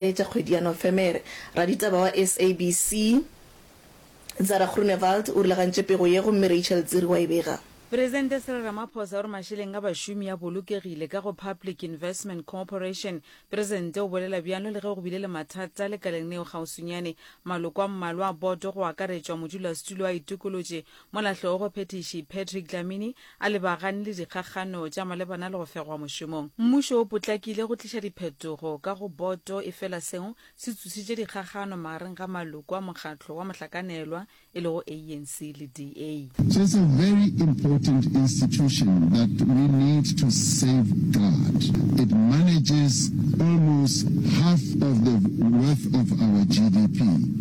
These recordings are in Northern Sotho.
tša kgwedi ya Nofemere. Raditaba wa SABC, Zara Groenewald o rulagantše pego ye gomme Rachel Tsiri wa e bega. Presidente Cyril Ramaphosa o re mašeleng a bašomi a bolokegile ka go Public Investment Corporation. Presidente o bolela bjalo le ge go bile le mathata lekaleng neo kgauswinyane. Maloko a mmalwa a boto go akaretšwa modulasetulo a itokolotše Molahlogo Phethiši Patrick Dlamini a lebagane le dikgakgano tša malebana le go fegwa mošomong. Mmušo o potlakile go tliša diphetogo ka go boto efela seo se tsošitše dikgakgano magareng ga maloko a mokgatlo wa mohlakanelwa e lego ANC le DA. She's a very important institution that we need to safeguard. It manages almost half of the worth of our GDP.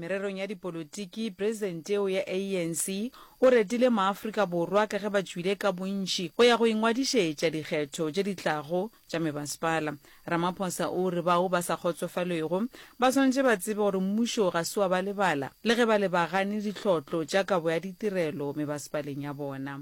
Mererong ya dipolotiki, presidente eo ya ANC o retile maAfrika Borwa ka ge ba tšwile ka bontši go ya go ingwadišetša dikgetho tše di tlago tša mebasepala. Ramaphosa o re bao ba sa kgotsofalwego ba swanetše ba tsebe gore mmušo ga se wa ba lebala le ge ba lebagane ditlhotlo tša kabo ya ditirelo mebasepaleng ya bona.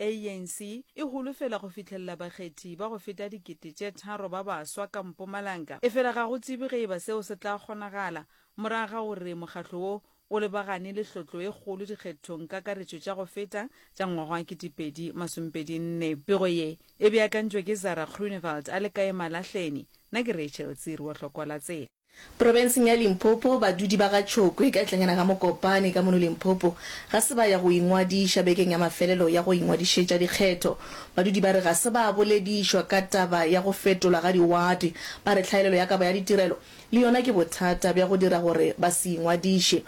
ANC e holofela go fihlelela bakgethi ba go feta dikete tše tharo ba baswa ka Mpumalanga, efela ga go tsebje ge eba seo se tla kgonagala morago ga gore mokgatlo wo o lebagane le hlotlo e kgolo dikgethong kakaretšo tša go feta tša ngwaga wa 2024. Pego ye e beakantšwe ke Zara Groenewald a le kae Malahleni, nna ke Rachel Tsiri wa Hlokwa la Tsela. Profenseng ya Limpopo, badudi ba ga Tšhokwe ka tlanyana ga Mokopane ka mono Limpopo ga se ba ya go ingwadiša bekeng ya mafelelo ya go ingwadišetša dikgetho. Badudi ba re ga se ba boledišwa ka taba ya go fetolwa ga diwate. Ba re tlhaelelo ya kabo ya ditirelo le yona ke bothata bja go dira gore ba se ingwadiše.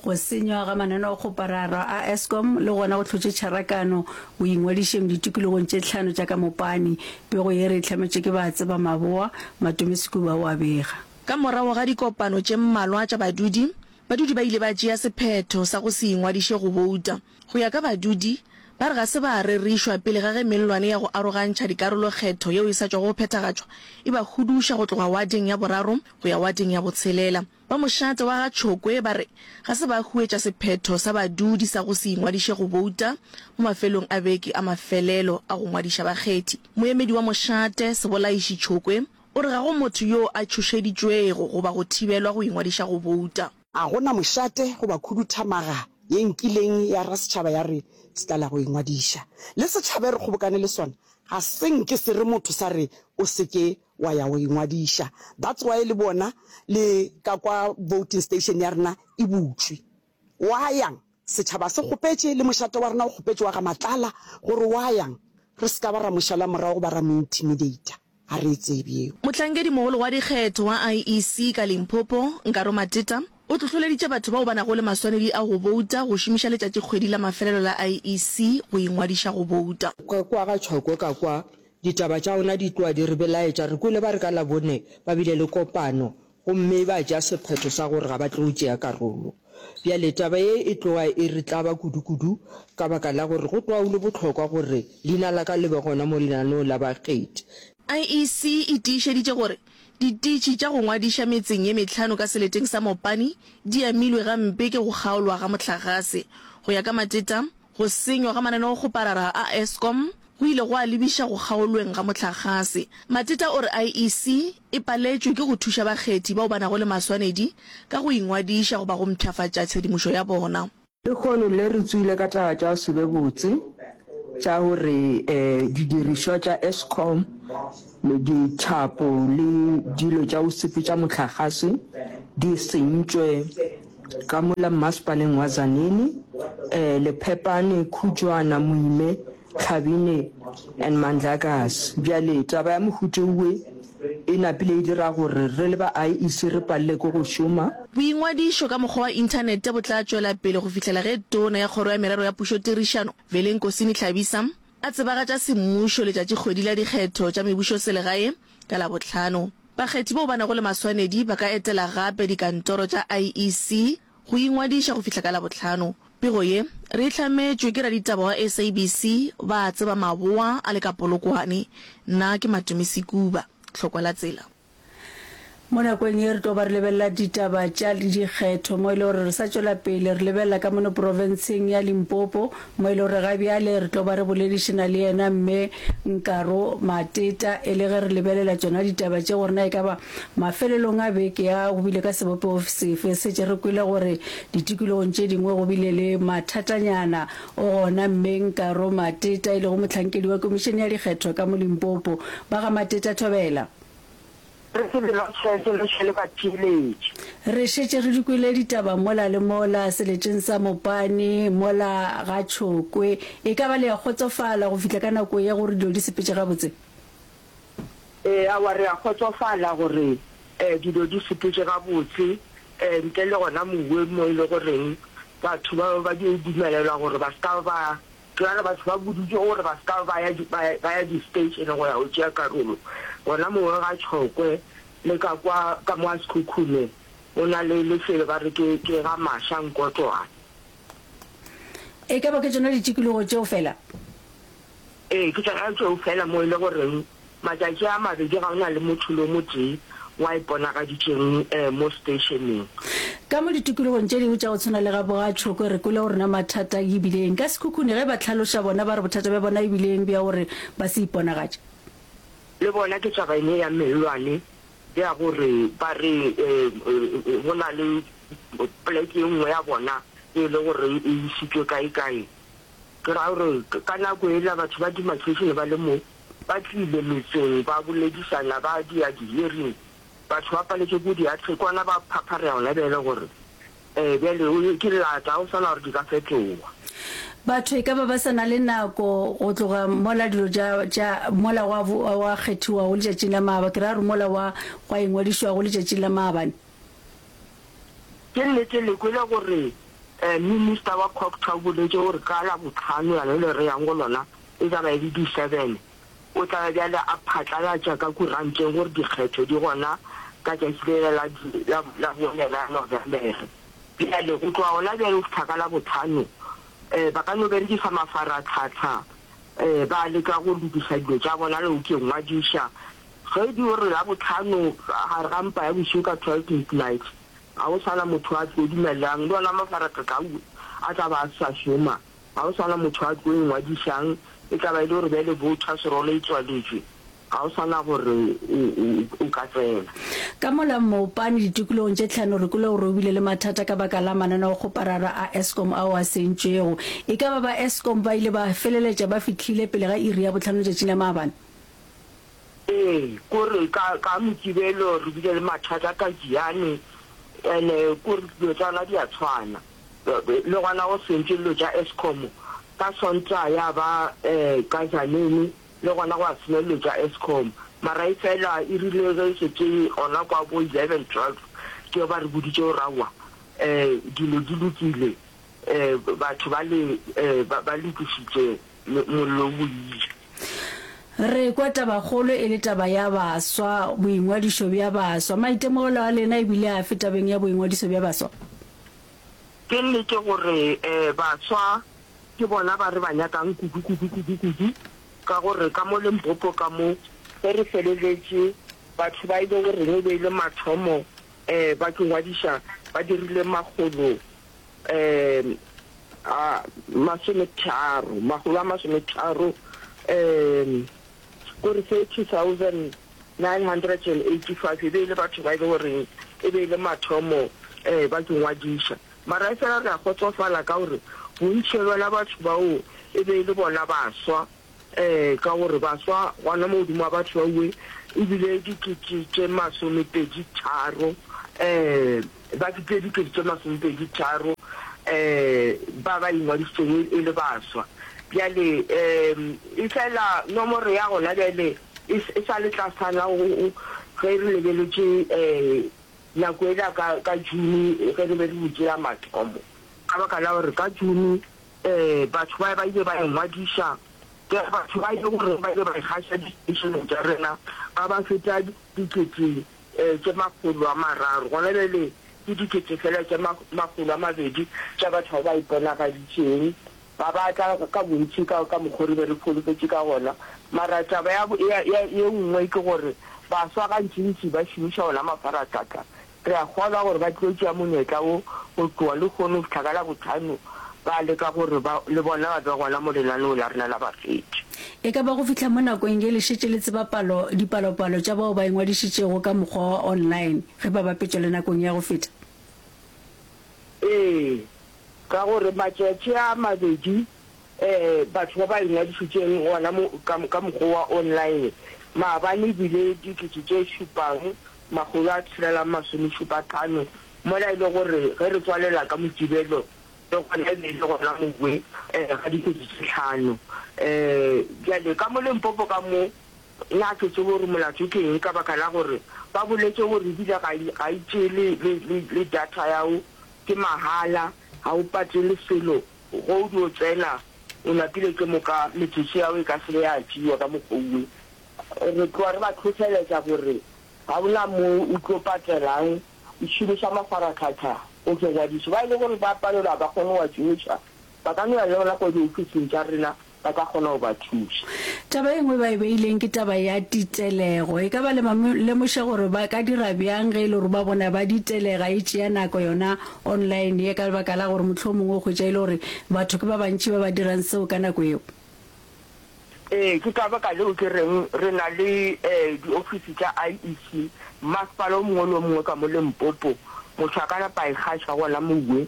Go senywa ga mananeokgopararo a Eskom le gona go hlotše tšharakano boingwadišeng ditikologong tše tlhano tša ka mopane. Pego ye re e hlametšwe ke ba tseba maboa, Matome Sekuba o a bega. Ka morago ga dikopano tše mmalwa tša badudi, badudi ba ile ba tšea sephetho sa go se ingwadiše go bouta. Go ya ka badudi, ba re ga se ba rerišwa pele ga ge mellwane ya go arogantšha dikarolo kgetho yeo e sa tšwago go phethagatšwa e ba huduša go tloga wading ya boraro go ya wading ya botshelela. Ba mošate wa ga Tšhokwe ba re ga se ba huetša sephetho sa badudi sa go se ingwadiše go bouta mo mafelong a beke a mafelelo a go ngwadiša bakgethi. Moemedi wa mošate, Sebolaiši Tšhokwe, o re ga go motho yo a tšhošeditšwego goba go thibelwa go ingwadiša go bouta. Ga go na mošate goba khuduthamaga ye nkileng ya ra setšhaba ya re se tlala go ingwadiša. Le setšhaba e re kgobokane le sona ga se nke se re motho sa re o se ke Wa ya go ingwadiša. That's why le bona le ka kwa voting station ya rena e butšwe. Wa yang? Setšhaba se kgopetše, le mošate wa rena o kgopetše wa ga Matlala gore wa yang? Re se ka ba ra mo šala morago goba ra mo intimidater. Ga re e tsebe yeo. Mohlankedi-mogolo wa dikgetho wa IEC ka Limpopo, Nkaro Mateta, o hlohloleditše batho bao ba nago le maswanedi a go bouta go šomiša letšatšikgwedi la mafelelo la IEC go ingwadiša go bouta. Ka kwa ga Tšhoko ka kwa Ditaba tša ona di tloga di re belaetša. Re kwele ba re ka Labone ba bile le kopano gomme ba tšea sephetho sa gore ga ba tlo tšea karolo. Bjale taba ye e tloga e re tlaba kudukudu ka baka la gore go tloga go le bohlokwa gore leina la ka le be gona mo lenaneong la bakgethi. IEC e tiišeditše gore ditiitši tša go ngwadiša metseng ye mehlano ka seleteng sa Mopani di amilwe gampe ke go kgaolwa ga mohlagase. Go ya ka Mateta, Go senywa ga mananeo go parara a Eskom go ile gwa lebiša go kgaolweng ga mohlagase. Mateta o re IEC e paletšwe ke go thuša bakgethi bao ba nago le maswanedi ka go ingwadiša goba go mpshafatša tshedimošo ya bona. Lehono le re tsoile ka taba tša se be botse tša gore didirišwa tša Eskom, dithapo le dilo tša go sepetša mohlagase di sentšwe. Ka mola mmasepaleng wa Tzaneen, eh, Lephepane, Khutšwana, Moime, Tlhabine and Mandlakas. Bjale taba ya mohuta owe e napile e dira gore re le ba IEC re palelwe ke go šoma. Boingwadišo ka mokgwa wa inthanete bo tla tšwela pele go fihlela ge Tona ya Kgoro ya Merero ya Pušotirišano, Velenkosini Tlhabisa, A tsebagatša semmušo letšatšikgwedi la dikgetho tša mebušoselegae ka Labohlano. Bakgethi bao ba nago le maswanedi ba ka etela gape dikantoro tša IEC go ingwadiša go fihla ka Labohlano. Pego ye re e hlametšwe ke raditaba wa SABC ba a tseba maboa a le ka Polokwane. Nna ke Matumisi Kuba. Tlhokwa la tsela. Mo nakong ye re tlo ba re lebelela ditaba tša dikgetho mo e le gore re sa tšwela pele re lebelela ka mono profenseng ya Limpopo mo e le gore ga bjale re tlo ba re boledišana le yena Mme Nkaro Mateta e le ge re lebelela tšona ditaba tše gore na e ka ba mafelelong a beke ya go bile ka sebopego sefe setše re kwele gore ditikologong tše dingwe go bile le mathatanyana o gona Mme Nkaro Mateta e lego mohlankedi wa Komišene ya Dikgetho ka mo Limpopo. Ba ga Mateta Thobela. Re se be lwa tšhese le šele batheeletši. Re šetše re di kwele ditaba mola le mola, seletšeng sa Mopane, mola ga Tšhokwe. E ka ba le a kgotsofala go fihla ka nako ye gore dilo di sepetše gabotse? Eawa, re a kgotsofala gore dilo di sepetše gabotse, ntle le gona moweng mo e le goreng batho ba be ba dio dumelelwa gore ba se ka ba Bjale batho ba buditšwe gore ba se ka ba ya di, ba, ba ya di-station go ya go tšea karolo. Gona mongwe ga Tšhokwe le ka kwa, ka mo a Sekhukhume, go na le lefelo ba re ke, ke ga Masha Nkotlwana. E ka ba ke tšona ditikologo tšeo fela? Ee, ke tšona tšeo fela mo e le goreng Matšatši a mabedi ga o na le motho lo motee wa iponagaditšeng mo steišeneng. Ka mo ditokologong tše dingwe tša go tshwana le ga Bogatšhoko re kwele gore na mathata ke bile eng ka sekhukhune ge ba hlaloša bona ba re bothata bja bona e bile eng bja gore ba se iponagatše. Le bona ke taba ene ya mellwane ya gore ba re go na le poleke e nngwe ya bona e le gore e isitšwe kae-kae. Ke ra gore ka nako ela batho ba Dimakhešene ba le mo ba tlile metseng ba boledišana ba dia di-hearing, batho ba paletšwe ke diatla ke gona ba phapharea gona bjale gore um bjale o ke llata go swana gore di ka fetoga. Batho e ka ba ba sa na le nako go tloga mola dilo tša tša mola gwa gwa kgethiwago letšatšing la maaba, ke ra gore mola gwa gwa ingwadišwago letšatšing la maabane. Ke nnete le kwele gore um minister wa Cogta o boletše gore ka Labohlano yane le re yang go lona, e tla ba e le di seven, o tla ba bjale a phatlalatša ka kuranteng gore dikgetho di gona ka tšatši lela la di la la bone la November-re. Bjale go tloga gona bjale go fihla ka la botlhano um ba ka no berekisa mafaratlhatlha um ba leka go lokiša dilo tša bona le go ke ngwadiša. Ge di o re la botlhano gare ga mpa ya bošego ka twelve midnight ga go sa na motho a tlo dumelelang le ona mafaratlhatlha a tla ba a sa šoma. Ga go sa na motho a tlo ingwadišang, e tla ba e le gore bjale bothwa serolo e tswaletšwe, ga go sa na gore o ka tsena. Ka mola Mmopane ditikologong tše tlhano re kwele gore o bile le mathata ka baka la mananeokgoparara a Eskom ao a sentšwego. E ka ba ba Eskom ba ile ba feleletša ba fihlile pele ga iri ya bohlano letšatšing la maabane? Ee, kore ka, ka Mokibelo re bile le mathata ka Giyani, and-e kore dilo tša rena di a tshwana. Le gona go sentše dilo tša Eskom ka Sontaga ya ba ka Tzaneen, le gona gwa senya dilo tša Eskom. Mara efela e rile ge e šetše gona kwa bo 11, 12 ke ge ba re boditše gore aowa dilo di lokile, batho bale ba lokišitše, mollo o boile. Re kwa tabakgolo e le taba ya baswa, boingwadišo bja baswa. Maitemogelo a lena e bile afe tabeng ya boingwadiso bja baswa? Ke nnete gore baswa ke bona ba re ba nyakang kudu, kudu, kudu, kudu, ka gore ka mo Limpopo ka mo, ge re feleletše, batho ba e le goreng e be e le mathomo ba ke ngwadiša ba dirile makgolo a masometharo, makgolo a masometharo. go re 30,985 e be e le batho ba e le goreng e be e le mathomo ba ke ngwadiša, mara efela re a kgotsofala ka gore bontši bja batho bao e be e le bona baswa, ka gore baswa gona mo godimo ga batho ba bangwe e bile dikete tše masomepedi tharo. ba dipedi kete tše masomepedi tharo um ba ba ingwadišitšego e, e le baswa. Bjale um efela nomoro ya gona bjale e, e sa le tlasana ge re lebeletše um nako ela ka, ka June ge re be re butše ya mathomo. Ka baka la gore ka June um batho ba ba ile ba ingwadiša ke batho ba e le gore ba ile ba ikgaša di-stationeng tša rena ba ba feta dikete tše makgolo a mararo, gona bjale ke dikete feela tše makgolo a mabedi tša batho bao ba iponagaditšeng, ga ba tla ka bontši ka, ka mokgwa o re be re holofetše ka gona. Mara taba ya, ya, ya, ye nngwe ke gore baswa gantšintši ba šomiša ona mafaratlata. Re a kgolwa gore ba tlilo tšea monyetla wo go tloga lehono go fihla ka Labohlano, ba leka gore ba, le bona ba be gona mo lenaneo la rena la bafeti. E ka ba go fihla mo nakong ye le šetše le tseba palo, dipalopalo tša bao ba ingwadišitšego ka mokgwa wa online ge ba bapetšwa le nakong ya go feta? Ee, ka gore matšatši a mabedi ee, batho ba ba ingwadišitšeng gona mo, ka, ka mokgwa wa online maabane e bile dikete tše šupang, makgolo a tshelela masomešupatlhano, mola e le gore ge re tswalela ka Motibelo, Le gona e be e le gona Mokwee ga dikete tše hlano. Bjale ka mo Limpopo ka mo, na ke tsebe gore molato ke eng ka baka la gore ba boletše gore e bile ga e, ga e tšee le, le, le, le data ya gago, ke mahala, ga o patele selo, ge o dio tsena o lapile ke moka metsotso ya gago e ka se be ya tšewa ka mokgwa o. Re tloga re ba hlohleletša gore ga go na mo o tlo patelang go šomiša mafaratlhatlha go tšwa ngwadišo. Ba e le gore ba palelwa ga ba kgone go a tšhomiša, ba ka no ya le gona kwa diofising tša rena, ba ka kgona go ba thuša. Taba e nngwe e ba e beileng ke taba ya titelego. E ka ba le ba lemoša gore ba ka dira bjang ge e le gore ba bona ba ditelega e tšea nako yona online ye ka lebaka la gore mohlomongwe o hwetša e le gore batho ke ba bantši ba ba dirang seo ka nako yeo? Ee, ke ka baka leo ke reng re na le diofisi tša IEC mmasepala o mongwe le o mongwe ka mo Limpopo. Motho a ka napa a e kgaša gona mowe,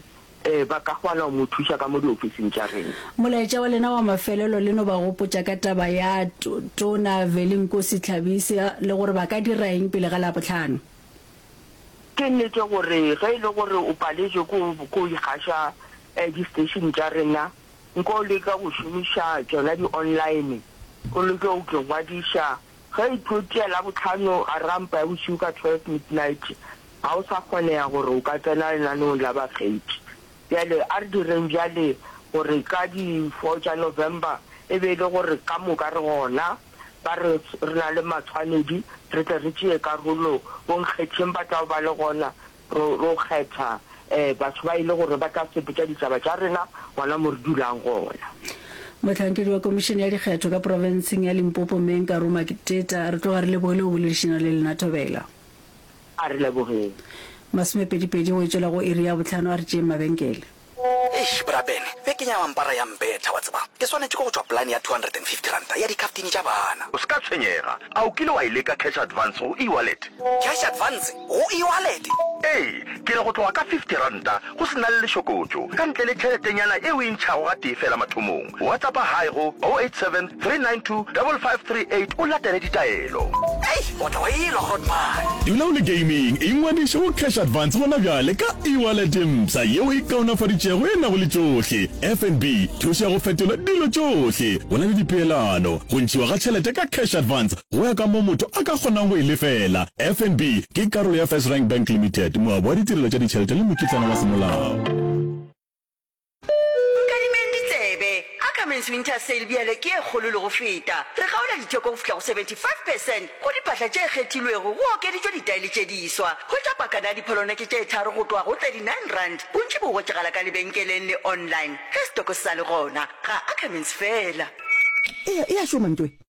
ba ka kgona go mo thuša ka mo diofising tša rena. Molaetša wa lena wa mafelelo le no ba gopotša ka taba ya Tona Velinkosi Tlhabise le gore ba ka dira eng pele ga Labohlano. Ke nnete gore ge e le gore o paletšwe ke go ikgaša disteishene tša rena, nko o leka go šomiša tšona di-online, o leke go ke ngwadiša. Ge e tlo tšea Labohlano gare ga mpa ya bošego ka twelve midnight, ga o sa kgonega gore o ka tsena lenaneong la bakgethi. Bjale a re direng bjale gore ka di four tša November e be e le gore ka moka re gona, ba re re na le matshwanedi, re tle re tšee karolo bonkgetheng ba tlago ba le gona Ro, ro kgetha eh, batho ba e le gore ba tla sepetša ditaba tša rena gona mo re dulang gona. Mohlankedi wa Komišene ya Dikgetho ka Profenseng ya Limpopo, Mme Nkaru Makiteta, re tloga re lebogile go boledišana le lena. Thobela. A re lebogeng. Masomepedipedi go e tšwela go iri ya bohlano, a re tšeeng mabenkele. Eish, bra Ben, be ke nyama mpara ya mbetha, wa tseba. Ke swanetše ke go tšwa polane ya two hundred and fifty ranta ya dikhaftini tša bana. O se ka tshwenyega. A o kile wa e leka cash advance go e-wallet? Cash advance go e-wallet? Ee, ke re go tloga ka fifty ranta go se na le lešokotšo, ka ntle le tšheletenyana e o e ntšhago gatee feela mathomong. WhatsAppa hi go 087 392 5538 o latele ditaelo. Hei, o tla wa elwa Groot man. Dula o le gaming, ingwadiše go Cash Advance gona bjale ka e-wallet mpsha yeo e kaonafaditšego e nago le tšohle, FNB, thušo ya go fetola dilo tšohle, go na le dipeelano, go ntšhiwa ga tšhelete ka Cash Advance go ya ka moo motho a ka kgonang go e lefela. FNB ke karolo ya FirstRand Bank Limited, moabi wa ditirelo tša ditšhelete le mokitlana wa semolao. Nkadimeng ditsebe. Ackermans Winter Sale bjale ke e kgolo le go feta. Re kgaola ditheko go fihla go 75 percent go diphatla tše kgethilwego, go okeditšwe ditaele tše diswa. Hwetša pakana ya dipholone ke tše tharo go tloga go R39, bontši bo hwetšagala ka lebenkeleng le online. Ge setoko se sa le gona, ga Ackermans fela. Eya, e a šoma ntwe.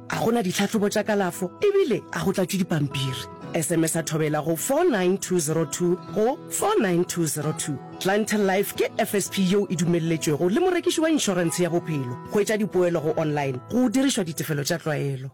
A go na ditlhahlobo tša kalafo ebile a go tlatšwe dipampiri? SMS-a thobela go 49202 go 49202. Clientele Life ke FSP yeo e dumelletšwego le morekiši wa inšorentshe ya bophelo. Hwetša dipoelo go online go dirišwa ditefelo tša tlwaelo.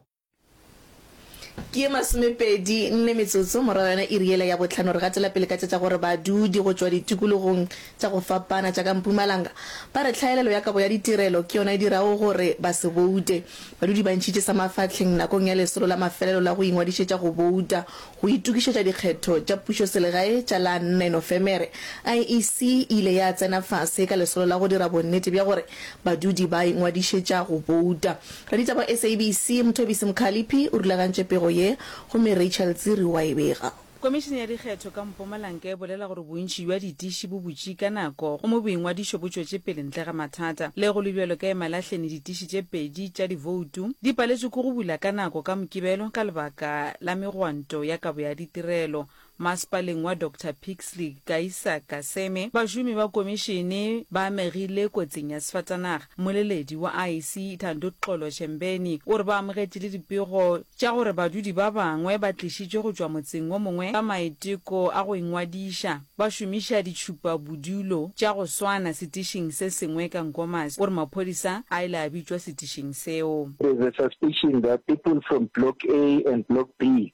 Ke ye masomepedi nne metsotso morago ga yona iri yela ya bohlano re gatela pele ka tša tša gore badudi go tšwa ditikologong tša go fapana tša ka Mpumalanga ba re tlhaelelo ya kabo ya ditirelo ke yona e dirago gore ba se boute. Badudi ba ntšhitše sa mafahleng nakong ya lesolo la mafelelo la go ingwadišetša go bouta go itokišetša dikgetho tša pušoselegae tša la 4 Nofemere. IEC e ile ya tsena fase ka lesolo la go dira bonnete bja gore badudi ba ingwadišetša go bouta. Raditaba wa SABC Mthobisi Mkhaliphi o rulagantše pego ye gomme Rachel Dziri wa e bega. Komišene ya Dikgetho ka Mpumalanka e bolela gore bontši bja ditiši bo butše ka nako gomme boingwadišo bo tšwetše pele ntle ga mathata. Le go le bjalo ka Emalahleni ditiši tše pedi tša divoutu di paletšwe ke go bula ka nako ka Mokibelo ka lebaka la megwanto ya kabo ya ditirelo masepaleng wa Doctor Pixley Kaisa Kaseme. Bašomi ba komišene ba amegile kotsing ya sefatanaga. Mmoleledi wa IEC Thandoxolo Shembeni o re ba amogetše le dipego tša gore badudi ba bangwe ba tlišitšwe go tšwa motseng wo mongwe ka maiteko a go ingwadiša ba šomiša ditšhupabodulo tša go swana setišing se sengwe ka Nkomazi. O re maphodisa a ile a bitšwa setišing seo. There's a suspicion that people from Block A and Block B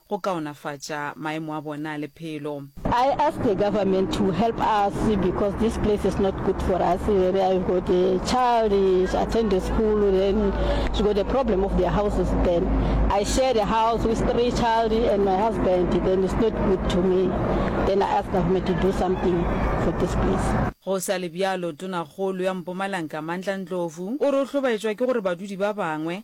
go kaonafatša maemo a bona a lephelo. I ask the government to help us because this place is not good for us where I've got a child is attend the school then she got a problem of their houses then I share the house with three child and my husband then it's not good to me then I ask government to do something for this place. Go sa le bjalo, Tonakgolo ya Mpumalanka Mandla Ndlovu o re o hlobaetšwa ke gore badudi ba bangwe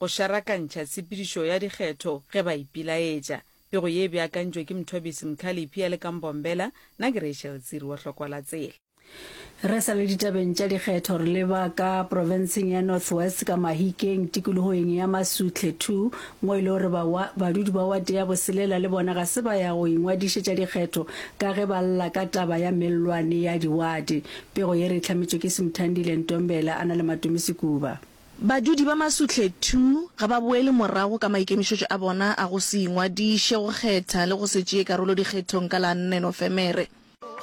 Go šarakantšha tshepedišo ya dikgetho ge ba ipilaetša. Pego ye e beakantšwe ke Mthobisi Mkhaliphi a le ka Mbombela, na ke Rachel Tsiri wa Hlokwala Tsela. Re sa le ditabeng tša dikgetho, re leba ka profenseng ya North West ka Mahikeng tikologoeng ya Masutle Two mo e lego gore ba wa, badudi ba wate ya Boselela le bona ga se ba ya go ingwadišetša dikgetho ka ge ba lla ka taba ya mellwane ya diwate. Pego ye re e hlametšwe ke Simthandile Ntombela a na le Matume Sekuba. Badudi ba Masuhle ii ga ba boele morago ka maikemišetšo a bona a go se ingwadiše go kgetha le go se tšee karolo dikgethong ka la nne Nofemere.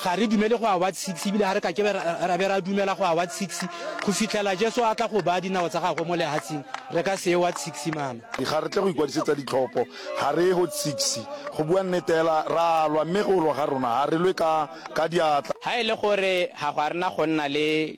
Ga re dumele go awards six ebile ga re ka ke ra be ra dumela go awards six go fihlela Jesu a tla go baya dinao tsa gagwe mo lehatsing. Re ka se awards six mama. Ga re tle go ikwadisetsa ditlhopho, ga re ye hot six. Go bua nnete hela ra lwa mme go lwa ga rona ga re lwe ka ka diatla. Ha e le gore ga go a rena go nna le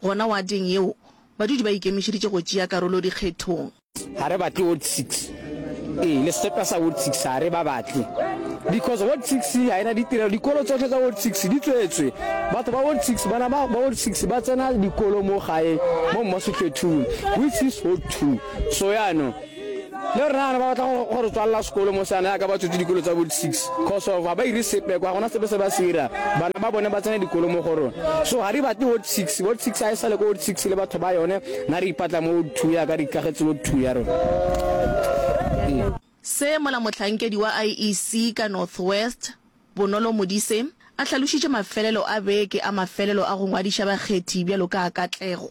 Gona wateng yeo, badudi ba ikemišeditše go tšea karolo dikgethong. Ga re batle Ward Six. Ee, le sesepa sa Ward Six ga re ba batle because Ward Six ga e na ditirelo. Dikolo tsohle tsa Ward Six di tswetswe. Batho ba Ward Six, bana ba Ward Six ba tsena dikolo mo gae mo Mmasotletung, which is Ward Two. So yaanong. le rena bana ba batla go re tswalela sekolo mo seana ya ka ba tswetse dikolo tsa bo 6 cause of ga ba ire sepe kwa gona sepe se ba se ira bana ba bone ba tsena dikolo mo go rona so ga re batle ward 6 ward 6 a e sale ko ward 6 le batho ba yone na re ipatla mo ward 2 ya ka re ikagetse ward 2 ya rona se mola mohlankedi wa IEC ka North West, Bonolo Modise, a hlalošitše mafelelo a beke a mafelelo a go ngwadiša bakgethi bjalo ka a Katlego.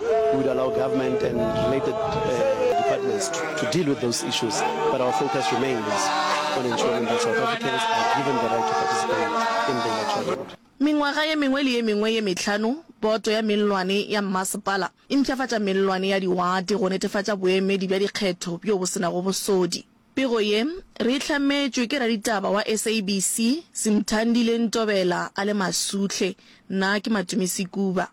We would allow government and related uh, departments to, to deal with those issues, but our focus remains on ensuring that South Africans are given the right to participate in the electoral round. Mengwaga ye mengwe le ye mengwe ye mehlano, poto ya mellwane ya mmasepala e mpšhafatša mellwane ya diwate go netefatša boemedi bja dikgetho bjo bo senago bosodi. Pego ye re e hlametšwe ke raditaba wa SABC, Simthandile Ntobela a le Masuhle, nna ke Matumisi Kuba.